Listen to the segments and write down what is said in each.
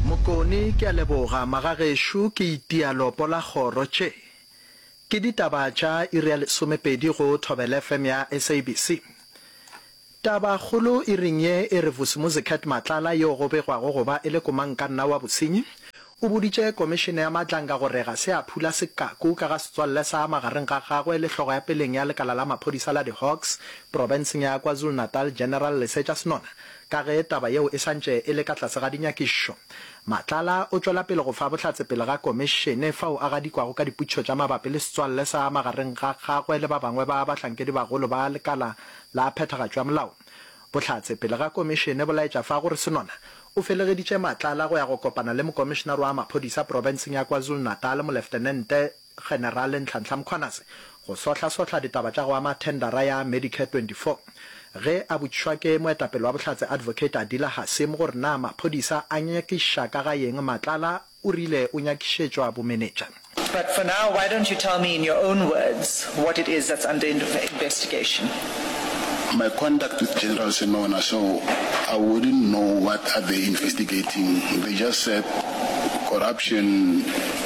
Mokoni, Ke a leboga magagešo ke itia lopo la kgoro tše ke ditaba tša iri ya lesomepedi go Thobela FM ya SABC. Taba kgolo iring ye e re Vusimuzicat Matlala yo go begwago go ba e le komankanna wa bosenyi o boditše Komišene ya Matlanga gore ga se a phula sekaku ka ga setswalle sa magareng ga gagwe le hlogo ya peleng ya lekala la maphodisa la di Hawks profenseng ya KwaZulu-Natal General Lesetša Senona Ka ge taba yeo e sa ntše e le ka tlase ga dinyakišo, Matlala o tšwela pele go fa bohlatse pele ga Komišene fao a gadikwago ka dipotšišo tša mabapi le setswalle sa magareng ga gagwe le ba bangwe ba bahlankedibagolo ba lekala la phethagatšo ya molao. Bohlatse pele ga Komišene bo laetša fa gore Senona o felegeditše Matlala go ya go kopana le Mokomišenare wa Maphodisa profenseng ya KwaZulu-Natal, Moleftenente Generale Nhlanhla Mkhwanazi go sohlasohla ditaba tša go ama thendara ya Medicare 24. Ge a botšišwa ke moetapele wa Bohlatse Advocate Adila Hasim gore na maphodisa a nyakiša ka ga yeng Matlala o rile o nyakišetšwa bomenetša. But for now, why don't you tell me in your own words what it is that's under investigation? My contact with General Semona so I wouldn't know what are they investigating, they just said corruption.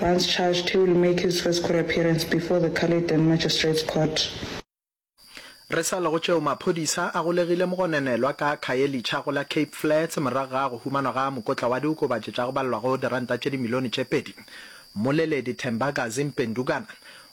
Once charged, he will make his first court appearance before the Caledon Magistrates Court. Re sa le go tšeo, maphodisa a golegile mogononelwa ka Khayelitsha go la Cape Flats morago ga go humanwa ga mokotla wa diokobatši tša go balelwago diranta tše dimilione tše pedi. Mmoleledi Thembagazi Mpendukana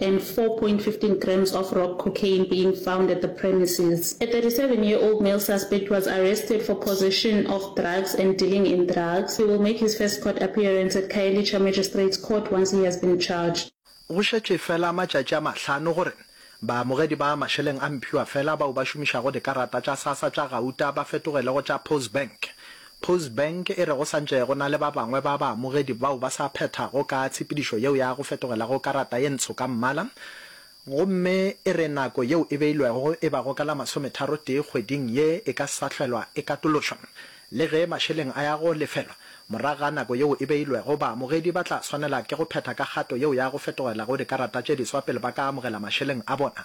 and 4.15 grams of rock cocaine being found at the premises. A 37 year old male suspect was arrested for possession of drugs and dealing in drugs. He will make his first court appearance at Khayelitsha Magistrates Court once he has been charged. Go šetše fela matšatši a mahlano gore baamogedi ba mašeleng a mphiwa fela bao ba šomišago dikarata tša Sassa tša Gauta ba fetogele go tša Postbank. Postbank e re go sa ntše go na le ba bangwe ba baamogedi bao ba sa phethago ka tshepedišo yeo ya go fetogelago karata ye ntsho ka mmala gomme e re nako yeo e beilwego e bago ka la masometharotee kgweding ye e ka sa hlwelwa e katološwa. Le ge mašeleng a ya go lefelwa morago ga nako yeo e beilwego, baamogedi ba tla swanela ke go phetha ka kgato yeo ya go fetogelago dikarata tše diswa pele ba ka amogela mašeleng a bona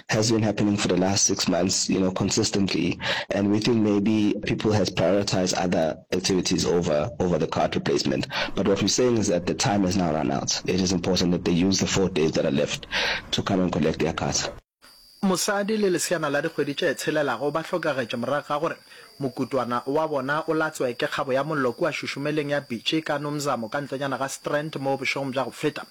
has been happening for the last six months, you know, consistently. And we think maybe people has prioritized other activities over, over the card replacement. But what we're saying is that the time has now run out. It is important that they use the four days that are left to come and collect their cards. Mosadi le leseana la dikgwedi tše tshelelago ba hlokagetše morago ga gore mokutwana wa bona o latswe ke kgabo ya mollo kua šušumeleng ya Bitšie ka Nomzamo ka ntlonyana ga Strand moo bošegong bja go feta.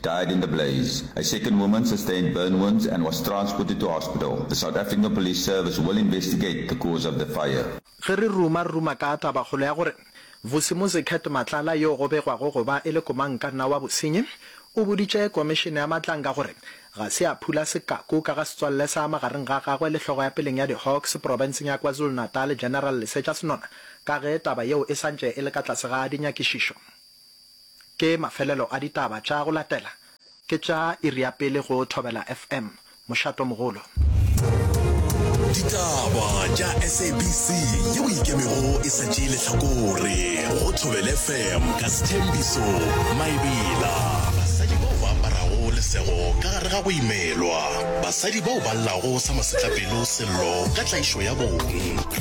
died in the blaze. A second woman sustained burn wounds and was transported to hospital. The South African Police Service will investigate the cause of the fire. Ge re ruma-ruma ka tabakgolo ya gore Vusimuzi Cat Matlala yo go begwago go ba e le komankanna wa bosenyi o boditše Komišene ya Matlanga gore ga se a phula sekaku ka ga setswalle sa magareng ga gagwe le hlogo ya peleng ya diHawks profenseng ya KwaZulu-Natal General Lesetša Senona ka ge taba yeo e santše e le ka tlase ga dinyakišišo. Ke mafelelo a ditaba tša go latela ke tša iri ya pele go Thobela FM. Mošato mogolo. Ditaba tša SABC yeo e ikemego e sa tšee lehlakore go Thobela FM ka Sthembiso Maebela. Basadi bao ba aparago lesego ka gare ga go imelwa. Basadi bao ba llago sa masetlapelo Sello ka tlaišo ya bong.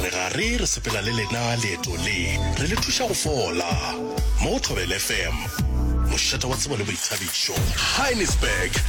Re gare re sepela le lena leeto le, re le thuša go fola. Mo go Thobela FM, mošate wa tsebo le boithabišo. Heinisberg